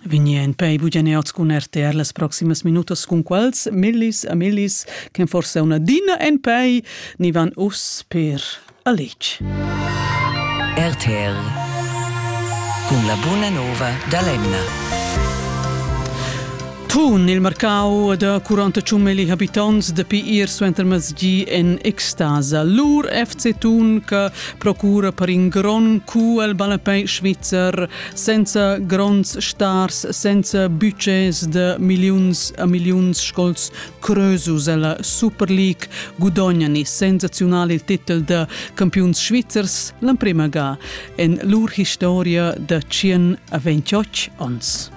Vigni en pei bugeneots cun RTR las proximas minutas cun quals millis a millis che forse una dina en pei ni van us per alic. RTR cun la buna nova da Lemna. Tun il marcau da 41 mili habitants dapi ir suenter masgi en extasa. Lur FC Tun che procura per in grond cu al ballapei svizzer senza gronds stars, senza budgets de millions a millions scols creusus alla Super League gudognani sensazional il titel de campiuns svizzers l'emprema ga en lur historia da 128 ons.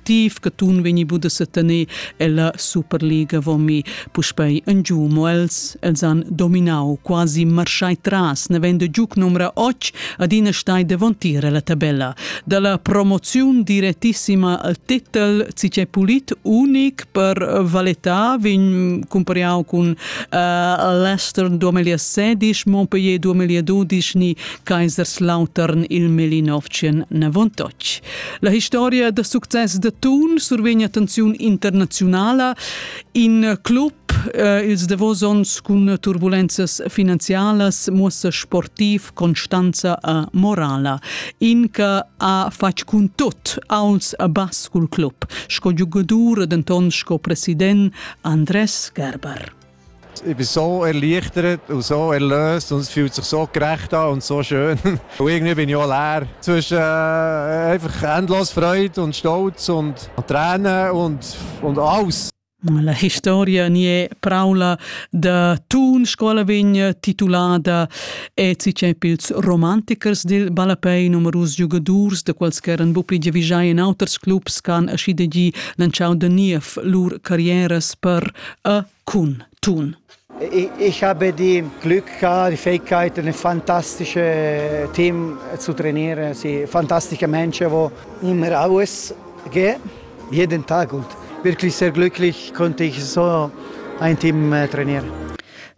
activ che tun vegni bu da setener ella Superliga vomi puspei en giu mo els els han dominau quasi marschai tras nevendo giuc numra 8 adina stai devontiere la tabella dalla promoziun direttissima al titel cice pulit unic per Valetta vin compariau cun uh, Leicester 2016 Montpellier 2012 ni Kaiserslautern il Melinovcien Navontoc La historia da success da Thun survegna attenziun internaziunala. In club eh, ils davos onns cun turbulenzas finanzialas muossa sportiv constanza a morala. In che ha fatg cun tot als bascul club, sco giugadur denton sco president Andres Gerber. ich bin so erleichtert und so erlöst und es fühlt sich so gerecht an und so schön. und irgendwie bin ich auch leer. Zwischen äh, einfach endlos Freude und Stolz und, und Tränen und, und alles. La historia ni è praula da Thun scola vegna titulada Ezi Chapels romantikers dil ballapei numerus giugadurs da quals ch'eran bu pli giavischai en auters clubs ch'han aschi de gi lantschau da niev lur carrieras per e cun tun. Ich habe die Glück gehabt, die Fähigkeit, ein fantastisches Team zu trainieren. Sie fantastische Menschen, die immer alles geben, jeden Tag. Und wirklich sehr glücklich konnte ich so ein Team äh, trainieren.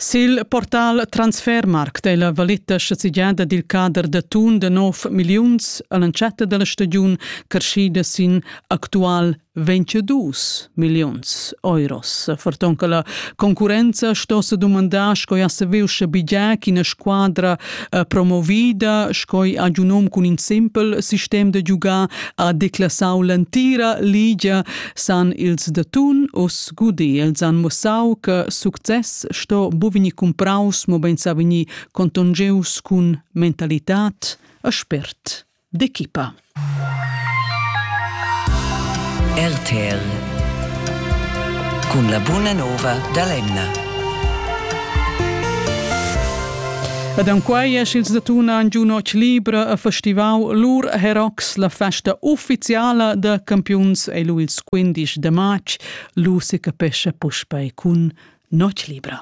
Sil portal Transfermarkt è la valetta sezzigiada dil cader da tun de 9 milliuns all'entschatta della stagiun carschida sin actual 22 milliuns euros. Ferton che la concurrenza sto se dumandar sco ja se veu sche bigia ch'ina squadra eh, promovida sco ha un nom cun in simpel sistem da giugar ha declassau l'antira ligia san ils de Thun us gudi els han mossau che success sto bovini compraus mo ben sa veni contongeus cun mentalitat e spert. d'equipa. RTL cun la buna nova da l'emna. Ed en quai es ils da Tuna an giu noc libra a festivau lur Herox, la festa ufficiala da campiuns e lu ils 15 de march. Lu si capescha puspei cun noc libra.